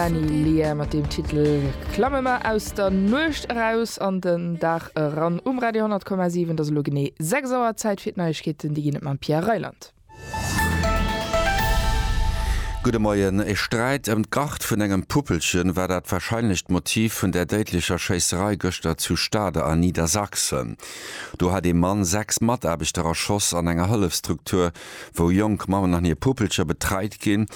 Benny Lear mat dem Titel Klamme mer aus der Nuecht eraus an den Dag eran um Radio 10,7. Et ass elo genee 6 Auer, Zäit fir d'Neiegkeeten. Déi ginn et mam Pierre Reyland. Gudde Moien. E Sträit ëm d'Gart vun engem Puppelchen war dat warscheinlecht Motiv vun där déidlecher Schéisserei gëschter zu Stade a Niedersachsen. Do hat ee Mann sechs Mataarbechter erschoss an enger Hëllefstruktur wou jonk Mammen an hir Puppelcher betreit ginn.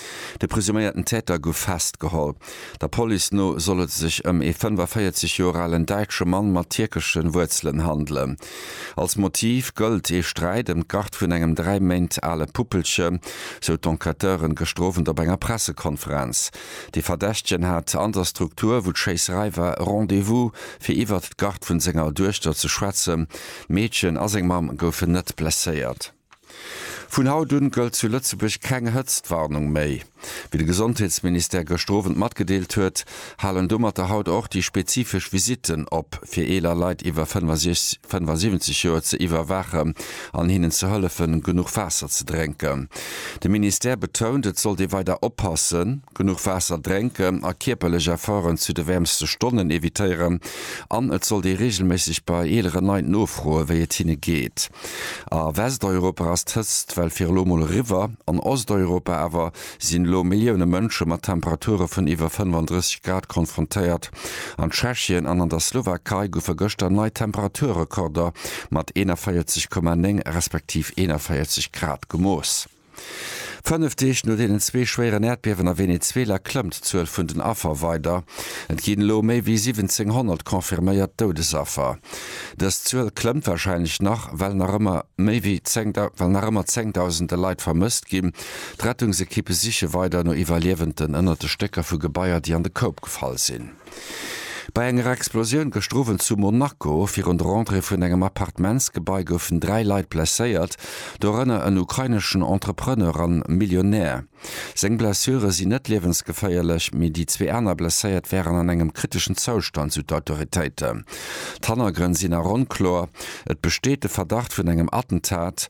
De presuméierten Täter gouf festgeholl. Der Police no soll et sech ëm ee 45 Joer alen däitsche Mann mat tierkeschen Wuerzelen handelen. Als Motiv gëllt ee Sträit ëm d'Garde vun engem dräi Méint ale Puppelche, sou d'Enquêteuren gëschter Owend op enger Pressekonferenz. De Verdächtegen hat an der Struktur, wou d'Schéisserei war, Rendez-vous, fir iwwert d'Garde vun senger Duechter ze schwätzen. D'Meedchen a seng Mamm goufen net blesséiert. Vun haut un gëllt zu Lëtzebuerg keng Hëtztwarnung méi. Wéi de Gesondheetsministère gëschter Owend matgedeelt huet, halen domatter haut och déi spezifesch Visitten op, fir eeler Leit iwwer 75 Joer ze iwwerwaachen an hinnen ze hëllefen, genuch Waasser ze drénken. De Ministère betount, et sollt ee weider oppassen, genuch Waasser drénken a kierperlech Efforten zu de wäermste Stonnen evitéieren an et sollt ee reegelméisseg bei eeleren Leit nofroen, wéi et hinne geet. A Westeuropa ass d'Hëtzt well fir elo mol eriwwer. An Osteuropa awer sinn elo Millioune Mënsche mat Temperature vun iwwer 35 Grad konfrontéiert. An Tschechien an an der Slowakei goufe gëschter nei Temperaturrekorder mat 41,9 respektiv 41 Grad gemooss. Fënnef Deeg no deenen zwee schwéieren Äerdbiewen a Venezuela klëmmt d'Zuel vun den Affer weider. Et ginn elo méi wéi 1.700 confirméiert Doudesaffer. Dës Zuel klëmmt warscheinlech nach, well nach ëmmer méi wéi 10 Dausende Leit vermësst ginn. D'Rettungsekippe siche weider no Iwwerliewenden ënnert de Stécker vu Gebaier, déi an de Koup gefall sinn. Bei enger Explosioun gëschter Owend zu Monaco virun der Entrée vun engem Appartementsgebai goufen dräi Leit blesséiert, dorënner en ukraineschen Entrepreneur a Millionär. Seng Blessure sinn net liewensgeféierlech, mee déi zwee aner Blesséiert wären an engem kriteschen Zoustand, sou d'Autoritéiten. D'Hannergrënn sinn nach onkloer, et besteet de Verdacht vun engem Attentat.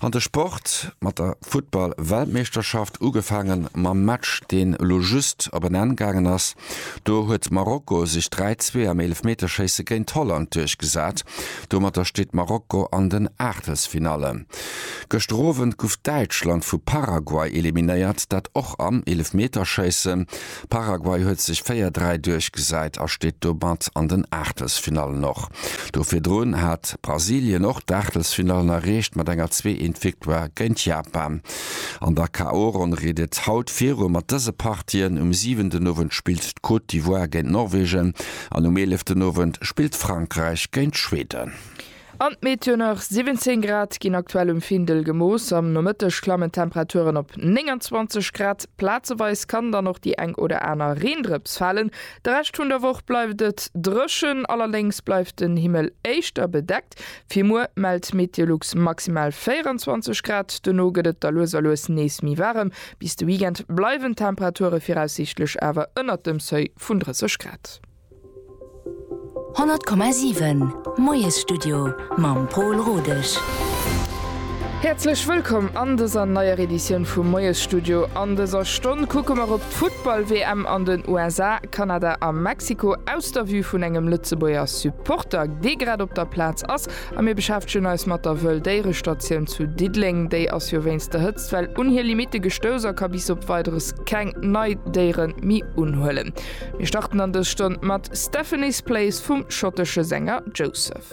An de Sport mat der Futtball-Weltmeeschterschaft, ugefaangen mam Match deen elo just op en Enn gaangen ass. Do huet Marokko sech 3, 2 am Eelefmeterschéisse géint Holland duerchgesat. Domatter steet Marokko an den Aachtelsfinalle. Gëschter Owend guff Däitschland vu Paraguay eliminéiert, dat och am Eelefmeterschéisse. Paraguay huet sech 4, 3 duerchgesäit a steet domat an den Aachtelsfinallen. Och do virdrun hat Brasilien och d'Aachtelsfinallen erreecht mat enger Zwee-Eent-Victoire géint Japan. An der KO-Ronn geet et haut viru mat dëse Partien, Um 7 den Owend spillt d'Côte d'Ivoire géint Norwegen an um 11 den Owend spillt Frankräich géint Schweden. An d'Meteo nach, 17 Grad ginn aktuell um Findel gemooss, am Nomëtteg klammen d'Temperaturen op 29 Grad. Plazeweis kann dann och déi eng oder aner Reendrëps falen. De Rescht vun der Woch bleift et dréchen, allerdéngs bleift den Himmel éischter bedeckt. Fir muer mellt Meteolux maximal 24 Grad, duerno gëtt et da lues a lues nees méi waarem. Bis de Weekend bleiwen d'Temperature viraussiichtlech awer ënnert dem Seuil vun 30 Grad. 100,7 Moiesstudio mam Pol Rodesch. Häerzlech wëllkomm an dëser neier Editioun vum Moiesstudio. An dëser Stonn kucke mer op d'Futtball-WM an den USA, Kanada a Mexiko aus der Vue vun engem Lëtzebuerger Supporter, dee grad op der Plaz ass. A mir beschäftegen eis mat der Wëll-Déiere-Statioun zu Diddeleng. Déi ass jo wéinst der Hëtztwell un hir Limitte gestouss a ka bis op Weideres keng nei Déiere méi unhuelen. Mir starten an dës Stonn mat Stephanie's Place vum schottesche Sänger Joseph.